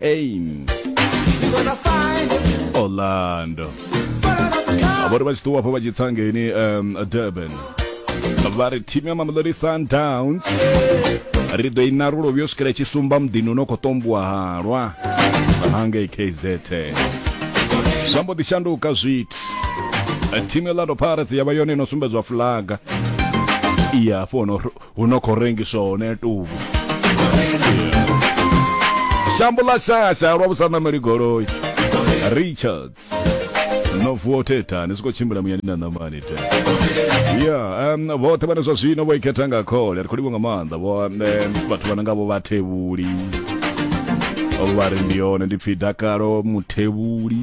Aim. Orlando. Vhori vha tshi ṱuwa afho vha tshi tsa ngeni um, Durban. Vha ri thimu ya Mamelodi Sundowns ri ḓo i narula vhuyo swikela tshi sumba muḓini uno khou tombiwa halwa hangei KZN. Zwa mbo ḓi shanduka zwithu. Thimu ya Orlando Pirates ya vha yone ino sumbedzwa fulaga. Iya afho no huno khou rengiswa hone tuvhu shambo ḽa shasha lwa vhusanameli goloi richards no vuwa theta ni siko tshimbila muyani na namani te ya um vhoṱhe vhane zwa zwino vho ikhetha nga khole ri khou livha nga maanḓa vho um, vhathu vhana nga vho vhathevhuli vha ri ndi yone ndi pfi dakalo muthevhuli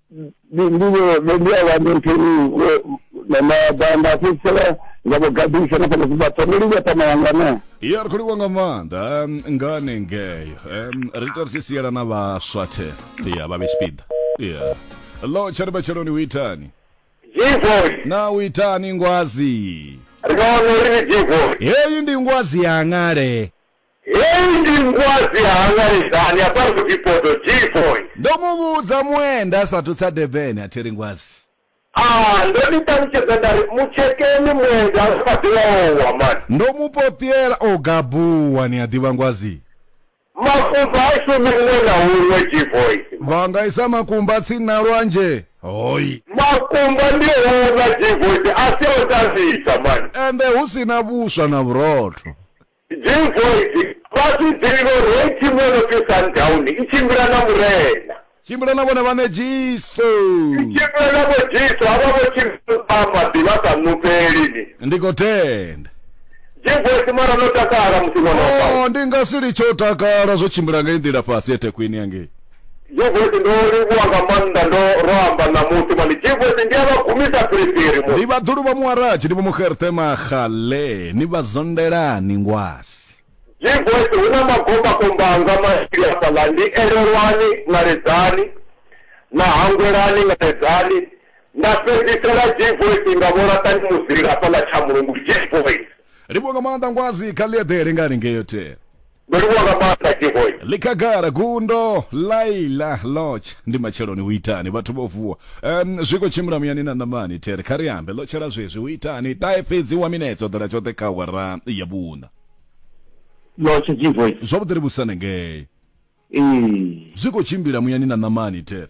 ndi ndi vho ndi a vhanda nthu na mabanda fhedzisela nga vho gadisa na fhano zwibatho ndi livha tama yanga na ya ri khou livha nga maanḓa em, nga hanengeyo Em, ri ita ri tshi siela na vhaswa the ya vha vhe tshipiḓa ya lo tsha ri matsheloni u itani Jivon, na u itani ngwazi ri vha wana uri ni Jivon. heyi ndi ngwazi yangale Heyi ndi ngwadzi ya Hangaledzani ya fhano Dipodo, G-Boy. Ndo mu vhudza muenda a sa athu tsa Durban a thi ri ngwadzi. Ah, ndo ni ṱalutshedza nda ri mu tshekeni muenda a kha ḓi vha o wa man. Ndo mu poṱiela o gabuwa ni a ḓivha ngwadzi. Makumba ha shumi huṅwe na huṅwe, G-Boy. Vha nga isa makumba tsini na lwanzhe, hoi. Makumba ndi o una, G-Boy, a si a u tambisa man. Ende hu si na vhuswa na vhurotho. Jim Boyd, Fhasi Ḓivho Rei Thimu yo no pfi Sundown i tshimbila na Murena. Tshimbila na vhone vhaṋe Jesu. I tshimbila na Vho Jesu, havha vho tshimbila vha maḓi vha sa ṋufheli ni. Ndi khou tenda. Jim Boyd, Mara no takala musi ṅwana wa Paulo. Oh, ndi nga si litshe u takala zwo tshimbila ngei nḓila fhasi eThekwini hangei. Jevoti ndo livhuwa nga maanḓa ndo ro amba ṋamusi mani Jevoti ndi a vha gumisa phiriphiri mu. Ndi vhaḓulu vha Muwarachi ndi vho Muxerte Maxale ni vha zondelani ngwasi. Jevoti hu na magombakomba anga mavhili hafhaḽa ndi Elelwani Ngaledzani na Hangwelani Ngaledzani nda fhedzisela Jevoti nga Vho Laṱani Muzila hafhaḽa Tshamulungu Jevoti. Livhuwa nga maanḓa ngwasi kha ḽi eḓele nga haningei yothela. Ndo livhuwa nga maanḓa Tshivhoi. ḽi khagala gundo laila lotch ndi matsheloni hu itani vhathu vho vuwa um, zwi khou tshimbila muyani na ṋamani there kha ri ambe lotshela zwezwi hu itani ṱahe fhedzi wa minetse o ḓela tshoṱhe kha awara ya vhuṋa Lotshela Tshivhoi. zwavhuḓi ri vhusane ngei Ee. zwi khou tshimbila muyani na ṋamani there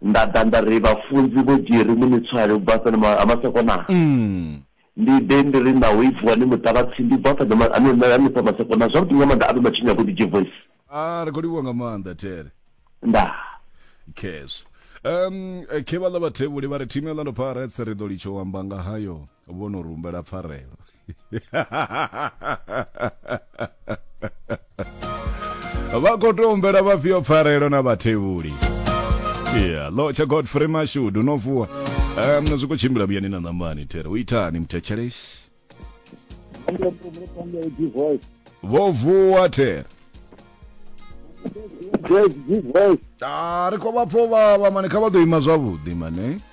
Nda ḓa nda ri, Vhafunzi vho dzhieri mini tswayo u bva fhano ma, ha Masekonaa? Ndi ḓe ndi ri, Naho i vuwa ni muṱavhatsindi u bva fhano ma, ha, ha, hanefha Masekonaa. Zwavhuḓi nga maanḓa, a vhe matshinyo avhuḓi, Jevoisi. Aa, ri khou livhuwa nga maanḓa, Tere. Ndaa. Khezwo. Um, khe vhaḽa vhathevhuli vha ri, Thimu ya Orlando Pirates ri ḓo litsha u amba nga hayo vho no ri humbela pfarelo. vha khou tou humbela vhafhio pfarelo na vhathevhuli yeah, lotsha godfrey mashudu no vuwa um, zwi khou tshimbila vhuyani na ṋamani tere u itani mthetshelesi vho vuwa tere a ri khou vha pfo vha vha mani kha vha ḓo ima zwavhuḓi mane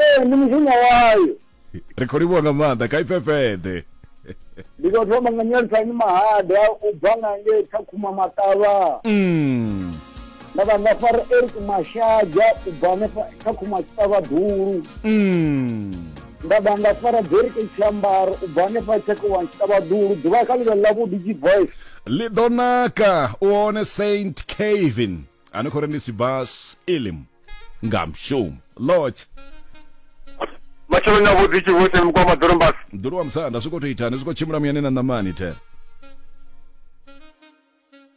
ee ndi mushumo wayo ri khou livhuwa nga maanḓa kha ifhefheḓe ndi khou thoma nga nyelisani mahada u bva nga ngei kha khuma maṱavha Mm. na vhanga fara eric mashaja u bva hanefha kha khuma tshiṱavha dulu Mm. nda vhanga fara derike tshiambaro u bva hanefha tshekowa tshiṱavha dulu ḓuvha kha ḽivhe ḽavhuḓi g voice ḽi ḓo naka u hone saint kevin ani khou ri ndi sibas ilim nga mushumo lodge matsheloni avhuḓi tshivhothe mukwa maḓorombasi mdulu wa musanda zwi khou tou itani zwi khou tshimbila muyani na ṋamani the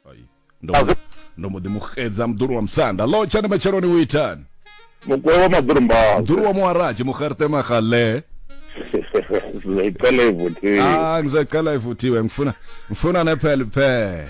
Ai, ndo mbo- ndo mbo ḓi mu xedza mdulu wa musanda lodge ani matsheloni u itani mukwa wa maḓorombasi mdulu wa muwaraji muxerte magale zicela ivuthiwe ah ngizacela ivuthiwe ngifuna ngifuna nephele phele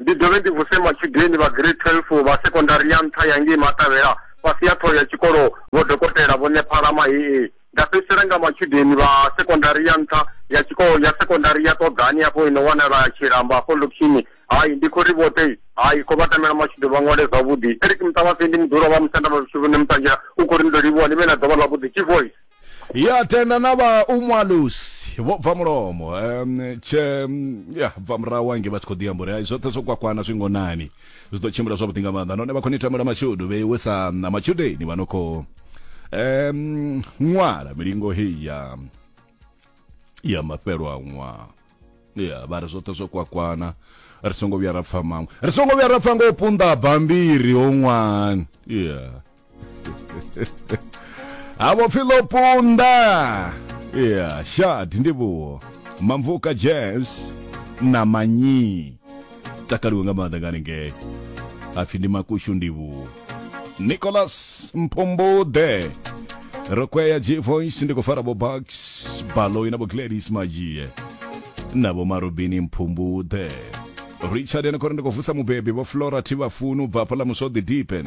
Ndi dovhe ndi vuse matshudeni vha Grade 12 vha Sekondari ya Nṱha ya ngei Matavhela fhasi ha thoho ya tshikolo Vho Dokotela Vho Nephala Mahee. Nda fhedzisela nga matshudeni vha Sekondari ya Nṱha ya tshikolo ya Sekondari ya Ṱoḓani afho i no wanala Tshilamba afho Lukhini. Hai, ndi khou ri vhoṱhe hai, khou vha tamela matshudeni vha ṅwale zwavhuḓi. Eric Muṱavhase ndi muḓulwa wa Musanda Mavhitshuvhuni Muṱanzhela u khou ri ni ḓo livhuwa ni vhe na ḓuvha ḽavhuḓi. Tshivhoise. ya tenda na vha umwalusi vho bva mulomo um, tshe mm, ya bva murahu wange vha tshi khou ḓi amba uri hai zwoṱhe zwo kwakwana zwi ngonani zwi ḓo tshimbila zwavhuḓi nga maanḓa nahone vha khou ni tamela mashudu vheiwe sa na matshudeni vha no khou um, ṅwala milingo heyi ya ya mafhelo a ṅwaha ya vha ri zwoṱhe zwo kwakwana ri songo vhuya ra pfa maṅwe ri songo vhuya ra pfa nga u punḓa bambiri ho ṅwani ya avo pfi ḽo punḓa ya shadi ndi vhuwo mamvuka jazz na manyi takaliwe nga maanḓa nga haningei apfi ndi makushu ndi vhuwo nicolas mphumbuḓe rokweya g voice ndi khou fara vho bax baloi na vho gladys madzhie na vho marobini mphumbuḓe richard ene khori ndi khou vusa mubebi vho flora thivhafunu bva hafhaḽa muswoḓi dipen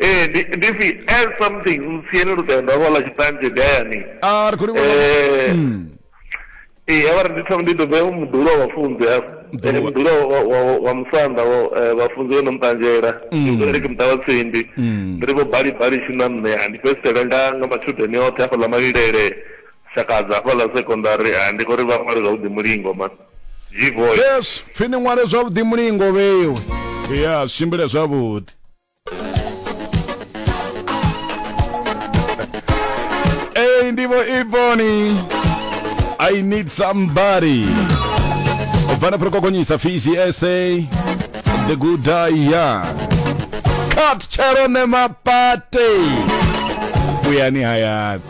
ee ndi ndi pfi as something ntsieni lutendo avho ḽa tshiṱanzhe ndi hayani a ri khou livhuwa Eh, Mm. ee a vha ri ndi thoma ndi dobe mudulo wa vhafunzi hafho Mudulo wa- mudulo wa- wa- wa- wa musanda wa eh, vhafunzi vho no muṱanzhela Mm. ri ke muṱa wa tsindi Mm. ndi ri vho bali bali tshi na nṋe ha ndi fhedzisele nga nga matshudeni oṱhe hafhaḽa malilele shakadza hafhaḽa secondary ha ndi khou ri vha ṅwale zwavhuḓi mulingo ma yesu pfi ni ṅwale zwavhuḓi mulingo vheiwe ya zwi tshimbile zwavhuḓi ei ndivho iboni i need somebody vana pro kokonyisa fisi sa the good die young cut chero nemapate vuyani hayani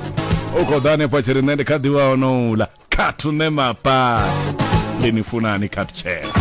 u khou ḓa hanefha tshi ri nṋe ndi kha ḓivha honoula khathu ne mapati ndi ni funani khathu tshela